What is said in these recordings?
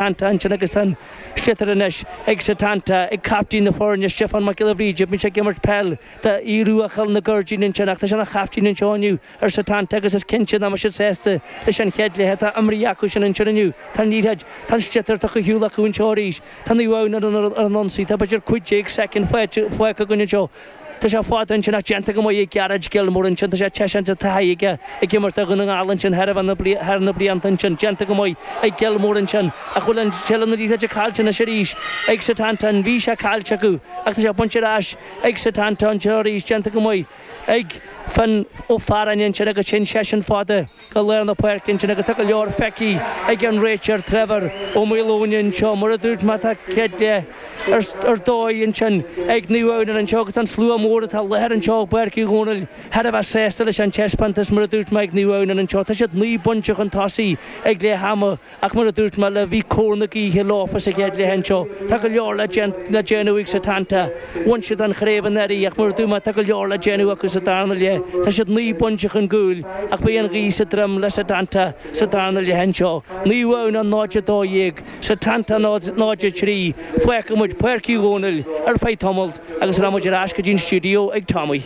Santa ansin agus tá an sliotar anois ag Setanta, ag caiftín na foirne, Stiofán Mac Giolla Bhríde. Bíonn sé ag imirt peil do Aodh Rua Chúil na gCuirridín ansin ach tá sé ina chaiftín anseo inniu ar Setanta agus is cinnte nach mbeidh siad sásta leis an chéad leath atá imrithe acu sin ansin inniu. Tá an liathróid, tá an sliotar tugtha ar shiúl acu anseo arís. Tá Naomh Adhamhnáin ar an ionsaí, tá b'fhéidir cúig déag soicind fágtha againn anseo. Tá sé fada ansin ach déanta go maith ag Gearóid Gilmore ansin. Tá sé teise de taithí aige ag imirt do Dhún na nGall ansin thar na blianta ansin. Déanta go maith ag Gilmore ansin ach bhfuil an tseilbh na liathróide caillte anois arís ag Setanta. Bhí sé caillte acu ach tá sé bainte ar ais ag Setanta anseo arís. Déanta go maith ag Fionn Ó Fearáin ansin agus téann seisean fada. Go lár na páirce ansin agus tá go leor feicthe ag an réiteoir Trevor Ó Maoldomhnaigh anseo. Mar a dúirt mé, tá céad leath ar dóigh ansin ag Naomh Adhamhnáin anseo agus tá an slua mór atá i láthair anseo i bPáirc Uí Dhomhnaill thar a bheith sásta leis an taispeántas. Mar a dúirt mé ag Naomh Adhamhnáin anseo, tá siad naoi bpointe chun tosaigh ag leath ama. Ach mar a dúirt mé libh, bhí cóir na gaoithe leofa sa chéad leath anseo. Tá go leor le déanamh ag Setanta. Bhain siad an chraobh anuraidh ach mar a dúirt mé, tá go leor le déanamh acu sa darna leath. Tá siad naoi bpointe chun gcúil ach beidh an ghaoth sa droim le Setanta sa darna leath anseo. Naomh Adhamhnáin 0-12 Setanta 0-3 Fágfaidh muid Páirc Uí Dhomhnaill ar feadh tamalt agus rachaidh muid ar ais go dtí an stiúideo ag Tommy.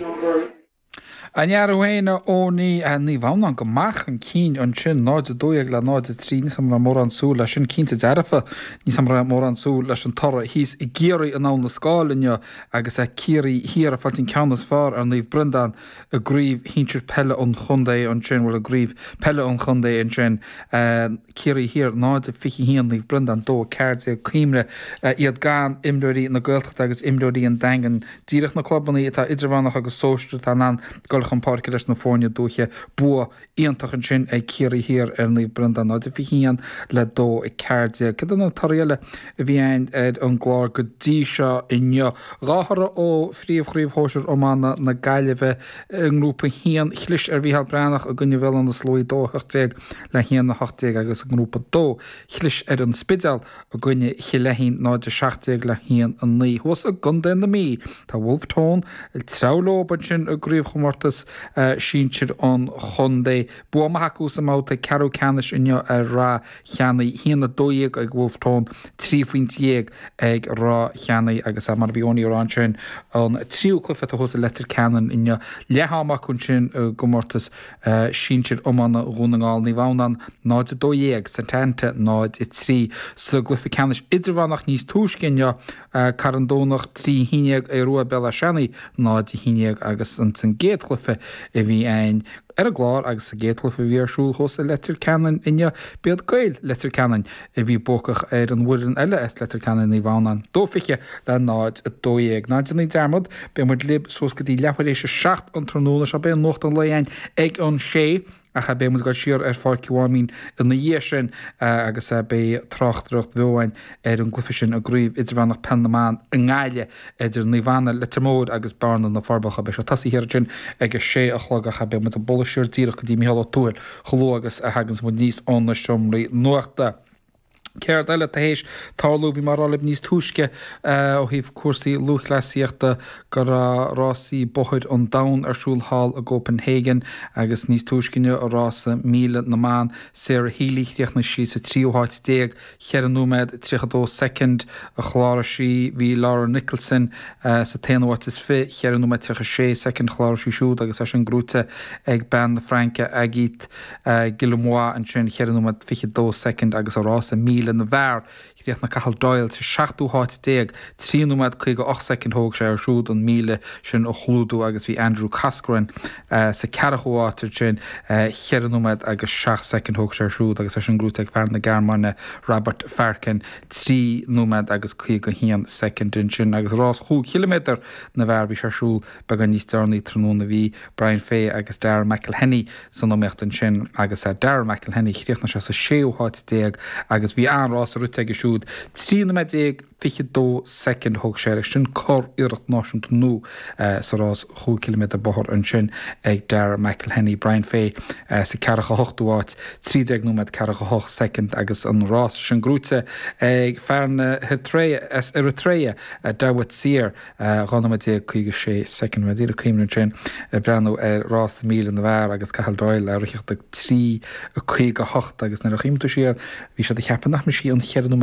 An fear thú féin, a Eoiní, Naomh Adhamhnáin, go maith chun cinn ansin, 0 12 le 0 3, níl a fhios agam an raibh mórán súil leis sin, cinnte dearfa, níl a fhios agam an raibh mórán súil leis an toradh thíos i gCiarraí in Abhainn an Scáil inniu agus Ciarraí Thiar ag fáilt an ceann is fearr ar Naomh Breandán i gCraobh Shinsir Peile an Chontae ansin, bhuel i gCraobh Peile an Chontae ansin. Ciarraí Thiar 0-21 Naomh Breandán 2, 14 Cuimhnigh, iad gan imreoirí na Gaeltachta agus imreoirí an Daingin. Díreach na clubanna atá idirmheánach agus sóisear atá in ann dul chun páirce leis na foirne dúiche. Bua iontach ansin ag Ciarraí Thiar ar Naomh Breandán, 0-21 le 2, 14. Cad iad na torthaí eile a bhí againn ar an gclár go dtí seo inniu? Dhá thoradh ó Phríomh-Chraobh Shóisir Iomána na Gaillimhe i nGrúpa 1. Chlis ar Mhícheál Breathnach i gcoinne Bhéal Átha na Sluaighe, 2, 18, Le haon 18 agus i nGrúpa 2, chlis ar An Spidéal i gcoinne Chill Fheichín 0-17 le 1-9. Thuas i gcontae na Mí, tá Bhulf Tón ag treabhadh leo ansin i gcraobhchomórtas sinsir an chontae. Bua maith acu sa mbabhta ceathrú ceannais inniu ar Ráth Cheannaigh. 1-12 ag Bhulf Tón, trí phointe dhéag ag Ráth Cheannaigh agus mar a bhí Eoiní ag rá ansin, an tríú cluiche atá thuas i Leitir Ceanainn inniu. Leath ama acu ansin i gcomórtas. sinsir iomána Dhún na nGall, Naomh Adhamhnán, 0 12, Setanta, 0, 3, sa gcluiche ceannais idirmheánach níos túisce inniu, Carn Domhnach, 3 11, Aodh Ruadh, Béal Átha Seanaidh, 0 11, agus sa gcéad chluiche a bhí againn ar an gclár agus sa gcéad chluiche a bhí ar siúl thuas i Leitir Ceanainn inniu, b'iad Gaeil Leitir Ceanainn. a bhí buacach ar an bhfoireann eile as Leitir Ceanainn, Naomh Adhamhnáin, dó 20 le 0, 12. Ná déanaí dearmad, beidh muid libh suas go dtí leath tar éis a seacht an tráthnóna seo. Beidh nuacht an lae again ag an sé ach beidh muid ag dul siar ar Pháirc an Mháimín ina dhiaidh sin agus beidh tráchtaireacht bheo again ar an gcluiche sin i gCraobh Idirmheánach Peil na mBan i nGaillimh. idir Naomh Anna, Leitir Móir agus Bearna, Na Forbacha. Beidh sé tosaithe thiar ansin ag a sé a chlog ach beidh muid ag bualadh siar díreach go dtí Micheál Ó Tuathail chomh luath agus a thaganns muid aníos ó na seomraí nuachta. Céard eile atá théis tarlú? Bhí mé á rá libh níos túisce ó thaobh cúrsaí lúthchleasaíochta go raibh rásaí bóthair an domhain ar siúl thall i gCopenhagen agus níos túisce inniu i rása míle na mban, Sarah Healy, chríochnaigh sí sa tríú háit déag. 4 nóiméad 32 soicind a chláraigh sí, bhí Laura Nicholson sa t-aonú háit is fiche 4 nóiméad 36 soicind a chláraigh sí siúd agus é sin gnóite ag bean na Fraince Agathe Guillemot ansin 4 nóiméad 22 soicind agus i rása míle na bhfear chríochnaigh Cathal Doyle sa seachtú háit déag 3 nóiméad 58 soicind thóg sé air siúd an míle sin a chlúdú agus bhí Andrew Coscoran Sa 40ú háit ansin cheithre nóiméad agus seacht soicind, thóg sé air siúd agus é sin gnóite ag fear na Gearmáine, Robert Farken, trí nóiméad agus 51 soicind. Ansin, agus rás chúig chiliméadar na bhfear, bhí sé ar siúl beagán níos deireanaí tráthnóna, bhí Brian Fay agus Darragh McElhinney san iomaíocht ansin agus Darragh McElhinney, chríochnaigh sé sa séú háit déag agus bhí an-rás rite aige siúd, trí nóiméad déag. 22 soicind a thóg sé air. Sin curiarracht náisiúnta nua sa rás chúig chiliméadar bóthair ansin ag Darragh McElhinney, Brian Fay sa 48ú háit, 13 nóiméad, 48 soicind agus an rása sin gnóite ag fear na hEritrea, Dawit Seare, 12 nóiméad, 56 soicind. Bhí mé díreach ag cuimhneamh ansin ag breathnú ar rása míle na bhfear agus Cathal Doyle á ritheacht ag 3:58 agus nuair a chuimhníonn tú siar bhí siad ag ceapadh nach mbrisfí an cheithre nóiméad